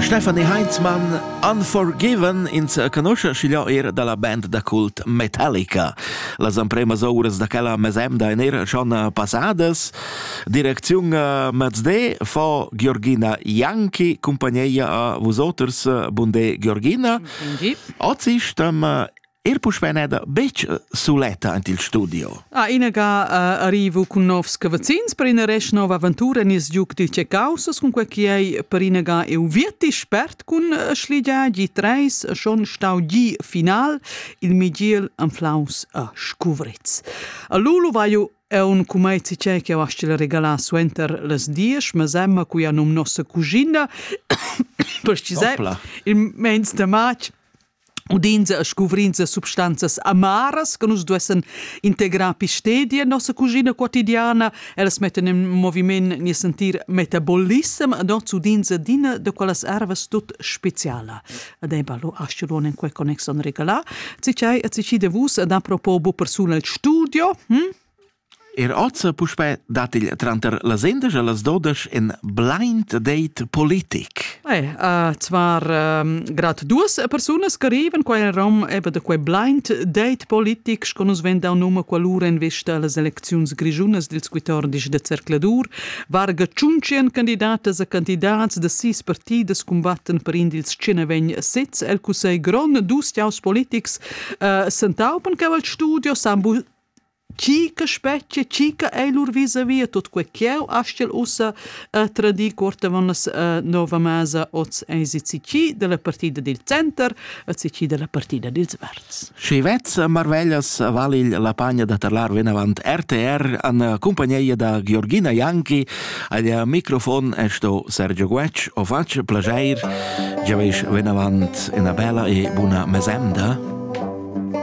Stefanie Heinzmann Unforgiven ins canusce schigliò er dalla band da cult Metallica. Las empremas ouras da quella mesemda en er schon passadas. Direcziun Mazde fa Georgina Janki compagneia a vusoters Bunde Georgina. Oggi stem Er puspè neda betg suletta en il studio. A inaga uh, arrivo cun novs cavazzins per ina resch nova aventura nies giug dil Caussas cun quei che ei per inaga eu virti spert cun schligia gi 3 schon stau gi final il Miguel Anflaus a Scuvritz. A Lulu vai jo è un cumezi c'è che avasci la regala suenter les dies, ma semma cui anum nossa cugina, precisai, il mens de matg, udinza e scuvrinza substanzas amaras che nus duessan integrar pi stedia en nossa cuschina quotidiana. Ellas mettan en moviment nies entir metabolissem ed oz udinza d'ina da quellas ervas tut speciala. Ed ei ballo aschelon en quei connex on regalà. Cicei e cicide vus ed apropos bu persuna il studio. Hm? Er oz puspè dat il tranter las indesch e las dodesch in blind date politic. Eh, uh, zvar um, grad duas persunas che arrivan qua in rom eba da quei blind date politic sco nus ven dau num qualura in vista las elecziuns grigiunas dils 14 de cercladur varga tschunchen candidatas e candidats de sis partidas combatten per in dils tschenevegn sez el cussegl grond dus tiaus politics uh, sentaupen che al studio sambu Chi che spetgia, chi che ei lur vis-a-via tut quei ch'jeu astgel ussa eh, tradir cuortavonnas eh, nova masa oz eis il CC dalla partida dil center, il CC dalla partida dils verds. Schi vezza marveglias val il la pagna da tarlar venavant RTR an compagnia da Georgina Janki, al microfon è sto Sergio Guec, o faccio plageir, giaveis venavant una bella e buna mesemda.